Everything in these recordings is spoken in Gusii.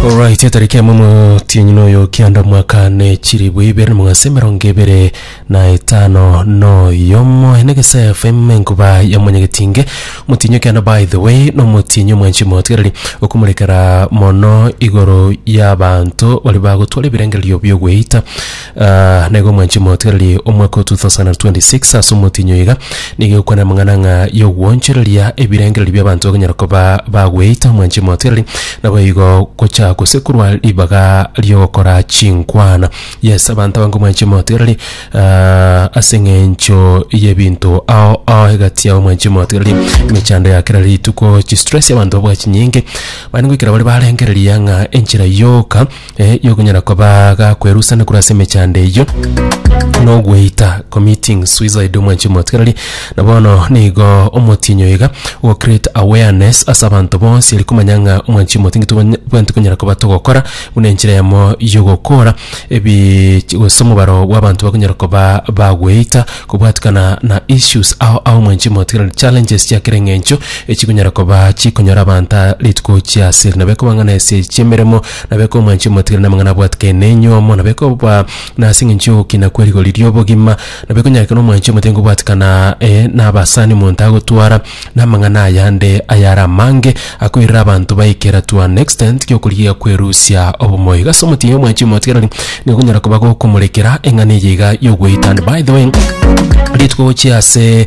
Alright, etariki ya momo tienyi noyo kianda mwaka ne chiribu ibere na mwase mirongo ibere na etano noyomo ene gese FM nkuba ya mwanyagetinge mutinyo kianda by the way no mutinyo mwanchi motigarari okumurekera mono igoro y'abanto bari bagotwara ebirengererio by'ogweita Aah, na igo mwanche motigererie omwaka o 2026 ase omotinyi oyo iga, nigo egokwana amang'ana ng'a y'ogwoonchoreria ebirengererio bi'abanto bakonyara koba bagweita, mwanche motigererie naboigo gocha gose korwa ribaga ri'ogokora chinkwana. Yes, abanto abange mwanche motigererie aah ase eng'encho y'ebinto ao ao egati yabo mwanche motigererie, emechando ya kera rituko, chistress, abanto babwate chinyinge, mani goikera bare barengereria ng'a enchera yoka. eh, yokonyara kobaga kwerusana korwa ase emechando eyio na ogweita committing suicide omwanchi omotigareri na bono nigo omotinyo iga go create awareness ase abanto bonsi eri komanya ng'a omwanchi omotingi tobanya- bwenti konyara koba togokora buna enchera yamo yogokora ebi chi- gose omobaro bwa abanto bakonyara koba bagweita kobwatikana na issues ao ao omwanchi omotigareri challenges chia kera eng'encho echikonyara koba chikonyora abanto rituko chia ase eri nabo ekoba ng'a na ase chiemeremo na bekomwancha omotigiri na amang'ana abwatikane nenyomo, na bekoba nase engencho y'ogokina kwe rigori ri'obogima, na bekonyakera omwancha omotengu obwatikana eh, na abasani omonto agotwara, na amang'ana ayande ayare amange akoirera abanto baikera to an extent gi'okorigia kwerusia obomo. Iga ase omotienyi omwancha omotigareri nigo okonyara koba gokomorekera eng'ana eye iga y'ogweita. And by the way, rituko gochia ase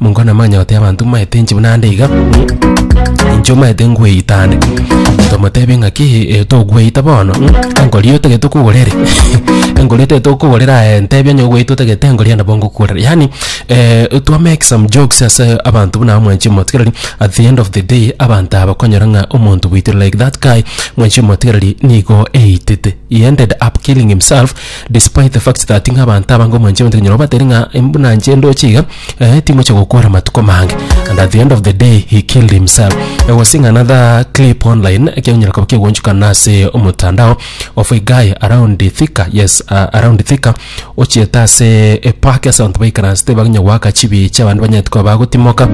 Mongo namanya goteeba abanto mbaete inche buna ande iga, inche omanyete ngweita ande. Nkamotebia ng'aki eh, togweita bono, engori eye otagete okogora ere, engori eye otagete okogora ere aye ntebi onye ogweita otagete engori eye nabo ngokogorera. Yaani eh, twa make some jokes ase abanto buna aba mwanchire motigereri, at the end of the day abanto aba bakonyora ng'a omonto bwaito like that guy mwanchire motigereri nigo eitete. He ended up killing himself. Despite the fact that ng'a abanto aba ngomanche abanto ekonyora obatere ng'a em buna inche ndoche iga eh, timoche gokora amatuko mange and at the end of the day he killed himself I was seeing another clip online ekenyora koba kegonchukana ase omotandao of a guy around the Thika yes uh, around Thika ochiete ase epark ase abanto baikaransete bagenya goaka chibiche abande banyete koba bagotimoka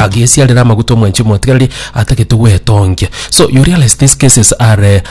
agesiarera amaguta omwanchi omotigareri atagete gwetongia so you realize these cases are eh,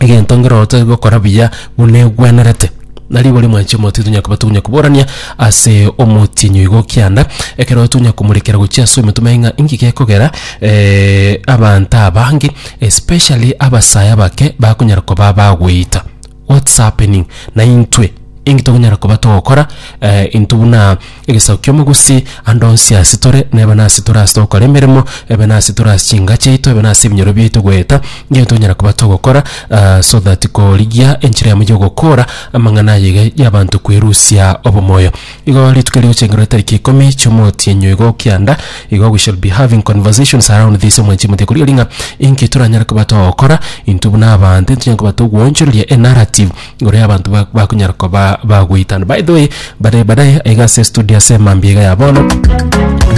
egento nkere ote gokora buya buna egwenerete. Na rigori mwanche omotienyi tonya koba tonya koborania ase omotienyi oigo kianda ekero tonya komorekera gochia ase ometuma aye ng'a inki gekogera abanto abange especially abasae abake bakonyara koba bagweita what's happening na intwe inki tokonyara koba togokora intwe buna. Egesaku ki'omogusi, ande onsi ase tore, nebe nase tore ase togokora emeremo, ebe nase tore ase chinka chiaito, ebe nase ebinyoro biaito goeta nginya tonyara koba togokora, aa so that korigia enchera yamo y'ogokoora amang'ana aya iga y'abanto kwerusia obomoyo. Igo rituko rigochengera etariki ikomi chi'omotienyo igo kianda, igo we shall be having conversations around this omwanchi omotienyo korigia ring'a inki toranyare koba togokora intwe buna abanto, intwe tonyare koba togwochoreria enarrative, Ngoria abanto ba- bakonyara koba bagoitana. By the way, bare badaye aiga ase estudio ase mambia iga ya bono,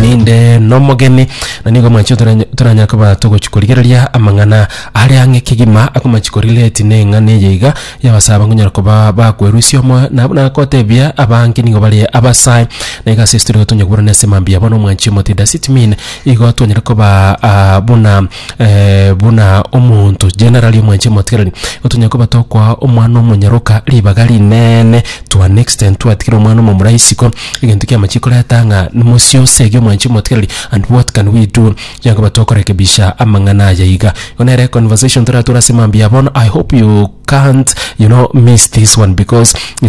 ninde nomogeni, na nigo mwanche torany- toranyare koba togochi korigereria amang'ana are ang'e kegima akomachi korelate na eng'ana eye iga ya abasae bakonyara koba bakwerusia omoyo, nabo nagotebia abange nigo bare abasae. Na iga ase estudio iga tonya koburana ase mambia ya bono, omwanchi omotwe Dasitmine, igo twanyare kobaa buna. buna omonto generali omwanchi omotigereri, igo tonyare koba tokoa omwana omonyaroka ribaga rinene to an extent twatigire omwana omomura isiko, egento ekiya amachia koreta ng'a mosie osegi omwanchi omotigereri and what can we do? Tonyare koba tokorekebisha amang'ana aya iga. Igo nere conversation toratore ase mambia bono, I hope you can't you know miss this one because is.